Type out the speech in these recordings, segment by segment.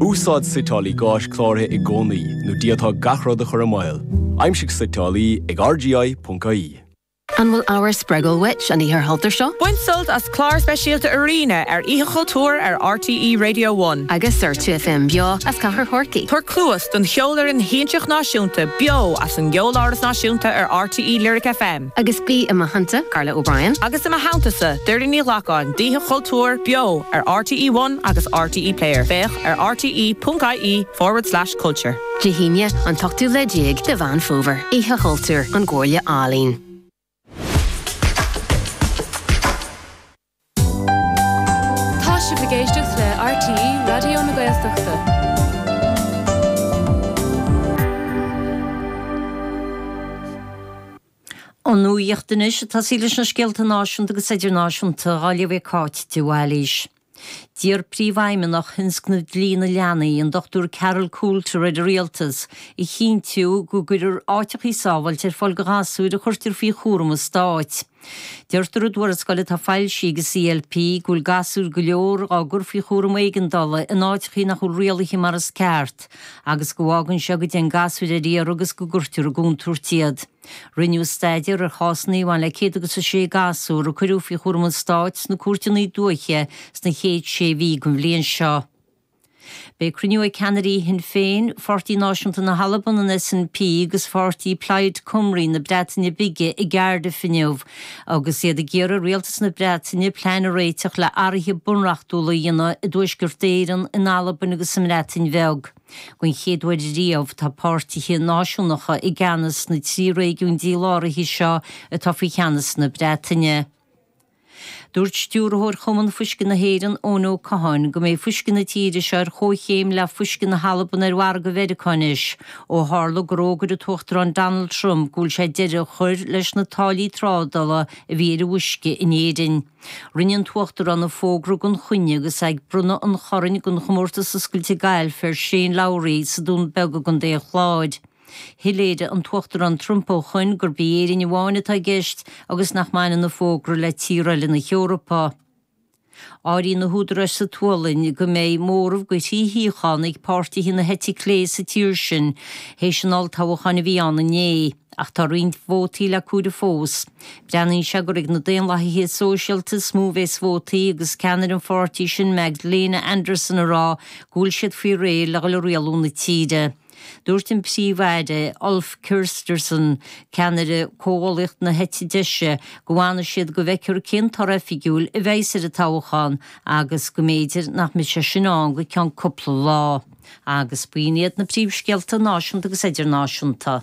Úsáid suiteálaí gáis cláraithe i gcónaí nó d'fhéadfá gach rud a chur i mbaol. Aimsigh suiteálaí ag rgi.ie. An bhfuil ábhar spreagúil uait an Oíche Chultúir seo? Bain sult as clár speisialta Arena ar Oíche Chultúir ar RTÉ Radio One. Agus ar 2FM beo as Cathair Chorcaí. Tabhair cluas don cheolfhoireann shiansach náisiúnta beo as an gCeoláras Náisiúnta ar RTÉ Lyric FM. Agus bí i mo theannta, Carla O'Brien. Agus i mo theanntasa, Doireann Ní Ghlacáin, d'Oíche Chultúir, beo ar RTÉ One agus RTÉ Player, féach ar rte.ie forward slash culture. Dé hAoine, an t-ochtú lá déag de Mheán Fómhair, Oíche Chultúir, ón gComhairle Ealaíon. Tá sibh ag éisteacht le RTÉ Raidió na Gaeltachta. An nuacht anois, ag tosaí leis na scéalta náisiúnta agus idirnáisiúnta á léamh ag Cáit de Bhailís. D'iarr Príomhfheidhmeannach Thionscnamh Dlí na Leanaí, an Dr Carol Coulter ar an Rialtas a chinntiú go gcuirfear áiteachaí sábháilte ar fáil do ghasúir a chuirtear faoi chúram an Stáit. Deirtear i dtuarascáil atá foilsithe ag an CLP go bhfuil gasúir go leor á gcur faoi chúram éigeandála in áiteachaí nach bhfuil rialaithe mar is ceart agus go bhfágann seo go dtéann gasúir ar iarraidh agus go gcuirtear i gcontúirt iad. Rinneadh staidéar ar chásanna a bhain le 106 gasúr a cuireadh faoi chúram an Stáit sna cúirteanna dúiche sna chéad sé mhí den bhliain seo. Beidh cruinniú ag ceannairí Shinn Féin, Pháirtí Náisiúnta na hAlban, an SNP agus pháirtí Plaid Cymru na Breataine Bige i gCardiff inniu agus iad ag iarraidh ar rialtas na Breataine plean a réiteach le athraithe bunreachtúla a dhéanamh i dTuaisceart Éireann, in Albain agus sa mBreatain Bheag. Don chéad uair riamh tá páirtithe náisiúnacha i gceannas sna trí réigiún díláraithe seo atá faoi cheannas na Breataine. Dúirt Stiúrthóir Chumann Fuisce na hÉireann, Eoin Ó Catháin, go mbeidh fuisce na tíre seo ar chomhchéim le fuisce na hAlban ar mhargadh Mheiriceá anois, ó tharla gur fhógair an tUachtarán Donald Trump go bhfuil sé deireadh a chur leis na táillí trádala a bhí ar an bhfuisce in Éirinn. Rinne an tUachtarán an fógra gan choinne agus é ag bronnadh an Chorainn den Chomórtas Oscailte Gailf ar Shane Lowry sa Dún Beag i gContae an Chláir. Shoiléirigh an tUachtarán Trump ó shoin gurb í Éirinn amháin atá i gceist agus nach mbaineann an fógra le tír eile na hEorpa. Áiríonn na húdaráis sa tSualainn go mbeidh móramh de thrí shuíochán ag páirtithe na heite clé sa tír sin théis an olltoghacháin a bhí ann inné, ach tá roinnt vótaí le comhaireamh fós. Breathnaíonn sé gur ag na Daonlathaithe Sóisialta is mó a bhéas vótaí agus ceannaire an pháirtí sin Magdalena Andersson ag rá go bhfuil siad faoi réir le dhul ag rialú na tíre. Dúirt an Príomh-Aire Ulf Kristersson, ceannaire Comhghuallaíocht na Heite Deise, go bhfanfaidh siad go bhfeicthear cén toradh oifigiúil a bheas ar an toghachán agus go mb'fhéidir nach mbeidh sé sin ann go ceann cúpla lá. Agus b'in iad na príomhscéalta náisiúnta agus idirnáisiúnta.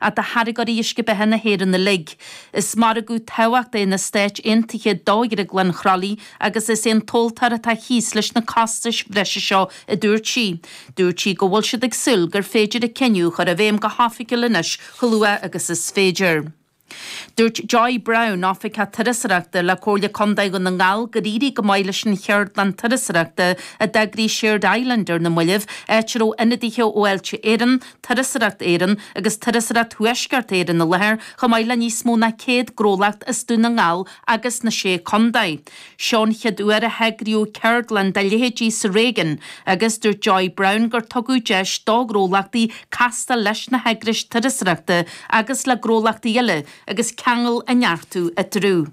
ach do tháirgeoirí uisce beatha na hÉireann uilig. Is margadh tábhachtach é na Stáit Aontaithe do Dhrioglann Chroithlí agus is é an tomhaltóir atá thíos leis na costais bhreise seo, a dúirt sí. Dúirt sí go bhfuil siad ag súil gur féidir an cinneadh a chur i bhfeidhm go hoifigiúil anois chomh luath agus is féidir. Dúirt Joy Browne, Oifigeach Turasóireachta le Comhairle Contae Dhún na nGall gur éirigh go maith leis an cheardlann turasóireachta a d'eagraigh Shared Island ar na moillibh, áit a raibh ionadaithe ó Fháilte Éireann, Turasóireacht Éireann agus Turasóireacht Thuaisceart Éireann i láthair, chomh maith le níos mó ná 100 gnólacht as Dún na nGall agus na Sé Contae. Seo an chéad uair a heagraíodh ceardlann dá leithéidí sa réigiún agus dúirt Joy Browne gur tugadh deis do ghnólachtaí castáil leis na heagrais turasóireachta agus le gnólachtaí eile agus ceangail a neartú eatarthu.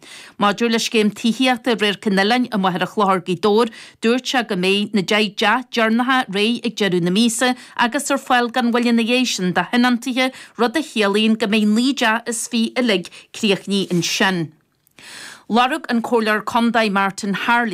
Maidir le scéim tithíochta Radharc an Oileáin i Machaire Chlochair, Gaoth Dobhair, dúirt sé go mbeidh na deich dteach deireanacha réidh ag deireadh na míosa agus ar fáil gan mhoill ina dhiaidh sin do thionóntaithe, rud a chiallaíonn go mbeidh naoi dteach is fiche uilig críochnaithe ansin. Lorg an Comhairleoir Condae Martin Harley,